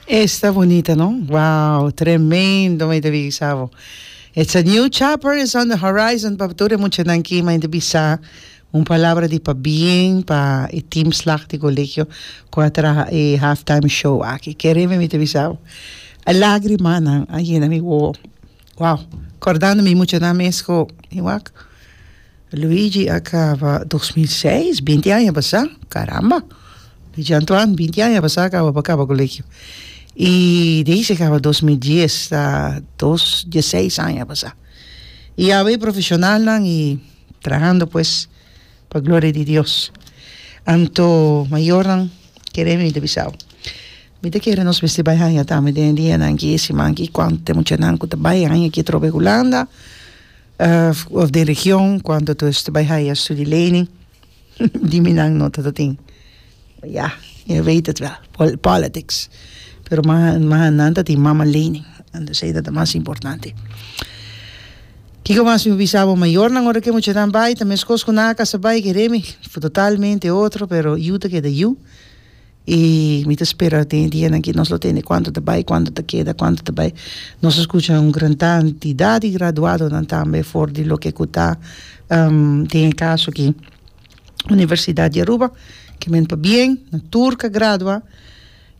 Esta bunita no wow tremendo mi ta bisa bo it's a new chapter is on the horizon pa tur e muchanan ki mi ta bisa un palabra di pabien pa e team slag di colegio cu a traha e half time show aki kere mi ta bisa bo e lagrima nan a yena mi wowo. Wow kordando mi mucha nan mes ku mi wak Luigi a kaba dos mil seis binti aña pasá karamba Luigi Antoine binti aña pasá kaba pa kaba kolegio i di ahi si kaba dos mil dies ta dos dies seis aña pasá i awe profeshonalnan i trahando pues pa gloria di Dios anto mayornan kere mi ta bisa bo. Mi ta kere nos mester bai haña tambe den e dianan aki, e siman aki, kuantu t'e muchanan ku ta bai haña aki atrobe ku Hulanda òf den region, kuantu atos ta bai haña studi leni, di mi nan no tatatin. Ya, e weet het wel, pòl, pòlitiks. Pero ma, ma nan ta tin mama leni, an dus ei ta ta mas importante. Kiko mas mi bisa bo? Mayornan ora ku e muchanan bai ta meskos ku nan a kasa bai, ke Remy, totalmente otro, pero yu ta keda yu. I mi ta spera den e dianan aki nos lo tende kuantu ta bai, kuantu ta keda, kuantu ta bai. Nos a skucha un gran kantidad di graduadonan tambe for di loke ku ta den e kaso aki Universidad di Aruba, ke men pabien nan tur ka gradua.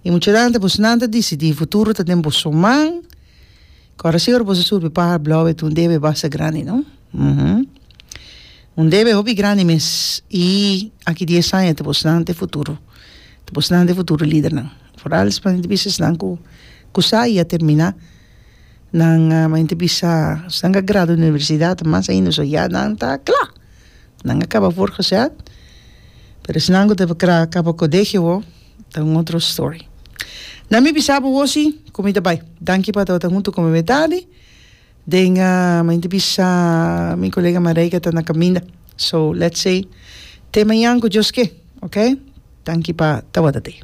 I muchedante boso nan ta disidí e futuro ta den boso man, kòrda si ora boso a surbi paha blòu e tun debe basa grandi, no. Un debe hopi grandi mes y aki dies aña ta pues nan ta e futuro ta pues nan ta e futuro lidernan foral esnan ta bisa esnan cu cusa y a termina nan men ta bisa esnan cu a gradua den universidad o mas ainda so ya nan ta cla nan a caba for cosad pero esnan cu ta por cra caba colegio bo ta un otro story nan mi bisa bo hosi cu mi ta bay danki pa ta wata hunto cu mi metadi. Den a mente bisa mi colega Mareike ta na caminda so let's say te mañan cu Dios ke oke tanki pa tawata te.